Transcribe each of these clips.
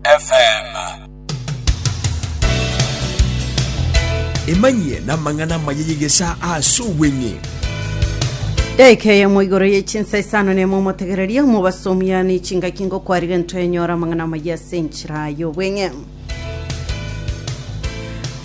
FM. Emanyie namang'ana amaya y'egesaa ase obweng'e. Daika eyemo igoro ye chinsa isano nemo omotegererie omobasomiani chingaki ngokwarire ntoenyora amang'ana amaya ase enchera y'obweng'e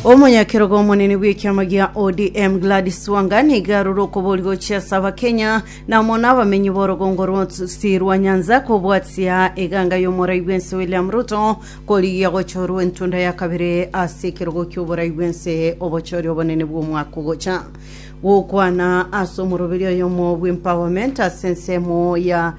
omonyakerogo omonene bw'ekiama gia odm gladys wanga niga arore okobori gochia ase abakenya Na amo n'abamenyi b'orogongo rw'orusi rwa Nyanza kobwatia eganga y'omorai bw'ense William Ruto korigia gochorwa entunda ya kabere ase ekerogo ki'oborai bw'ense obochori obonene bw'omwaka ogocha. Gokwana ase omoroberi oyomo bw'Empowerment ase ensemo ya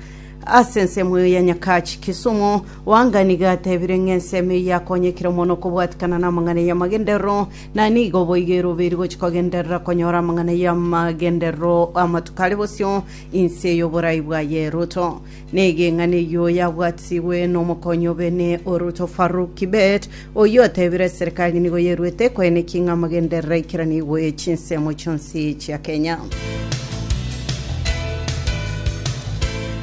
ase ensemo eyo ya Nyakach Kisumu, Wanga nigo atebire ng'a ensemo eye yakonyekire mono kobwatikana n'amang'ana y'amagenderero Na nigo boigeire obeiri gochia kogenderera konyora amang'ana y'amagenderero amatuko are bosio inse y'oborai bwaye. Ruto negeng'ana eyio yabwatigwe nomokonyi obe ne Oruto Farouk Kibet, oyio otebire eserekari nigo yeruete koenekia ng'a amagenderero aikeranigwe chinsemo chionsi chia Kenya.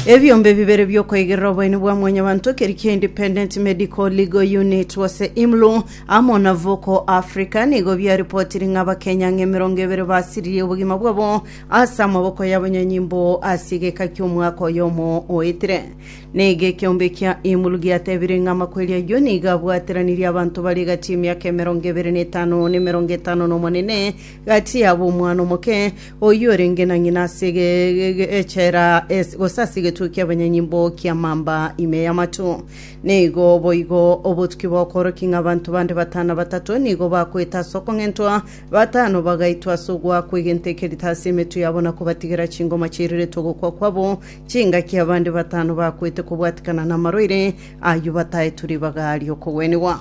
Ebiombe bibere biokoigerera oboeni bwa mwanyabanto keri kia Independent Medical Legal Unit gose IMLU Amo na Vocal Africa nigo biaripotirie ng'a Abakenya ng'a emerongo ebere basiririe obogima bwabo ase amaboko y'abanyanyimbo ase egeka ki'omwaka oyomo oetire. Nigo ekeombe kia Imulu giatebire ng'a amakweri ayio nigo abwateranirie abanto bare egati y'emiaka emerongo ebere na etano na emerongo etano na omonene gati yabo omwana omoke oyio orenge na ng'ina ase ege- ege- echela es- gose ase egetuo ki'abanyanyimbo kia mamba ime y'amatu. Nigo boigo obotuki bw'okworokia ng'a abanto bande batano na batato nigo bakwete ase okong'entwa, batano bagaitwa ase ogoakwa egento ekerito ase emetwe yabo na kobatigera chingoma chiiriretwe ogokwa kwabo, chingaki abande batano bakwete kobwatikana namarwaire, ayio bataetwe ribaga ri'okogwenigwa.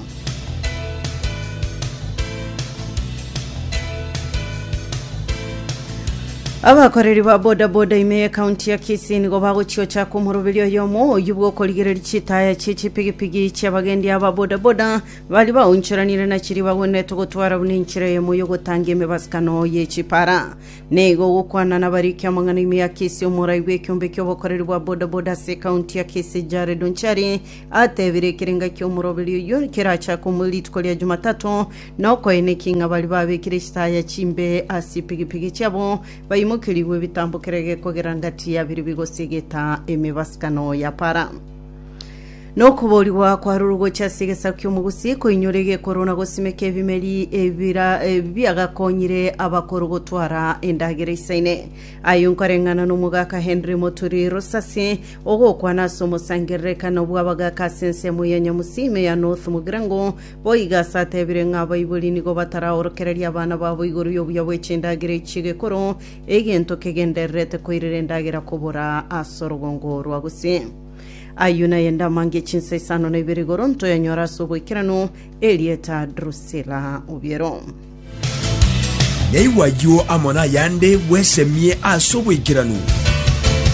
Abakoreri ba bodaboda ime y'ekaunti ya Kisii nigo bagochia gochaka omoroberi oyomo oyio bw'okorigereria chitaya chie chipigipigi chi'abagendi aba bodaboda baria baonchoranire na chiria bagwenerete gotwara buna enchera eyemo y'ogotangia emebasukano ye chipara. Nigo ogokwana nabariki amang'ana ime ya Kisii omorai bw'ekiombe ki'obokoreri bwa bodaboda ase ekaunti ya Kisii Jared Onchari Atebire ekerenga ki'omoroberi oyio kerachake omo rituko ria Jumatato, nokoena ki ng'a baria babekire chitaya chimbe ase chipigipigi chiabo baimokerigwe ebitambo kerege kogera ngati ya biria bigosiegeta emebasibkano ya para. Nokoboorigwa kwarure gochia ase egesaku ki'omogusi, koinyora egekoro na gosimeka ebimeri ebira biagakonyire abakoro gotwara endagera isaine. Aye nkoreng'ana n'omogaka Henry Moturi Rusasi, Ogokwana ase omosangererekano bw'abagaaka ase ensemo ya Nyamusime ya North Mugirango, boigo ase atebire ng'a abaibori nigo bataraorokereria abana babo igoro y'obuya bwe chindagera echi ch'egekoro, egento kegendererete koirera endagera kobora ase orogongo orwa gose. Ayio naye ndamange ya chinsa isano na ibere igoro ntoyanyore ase oboikeranu, erieta Drusilla Obiero. Naigwa ayio amo nayande bwesemie ase oboikeranu.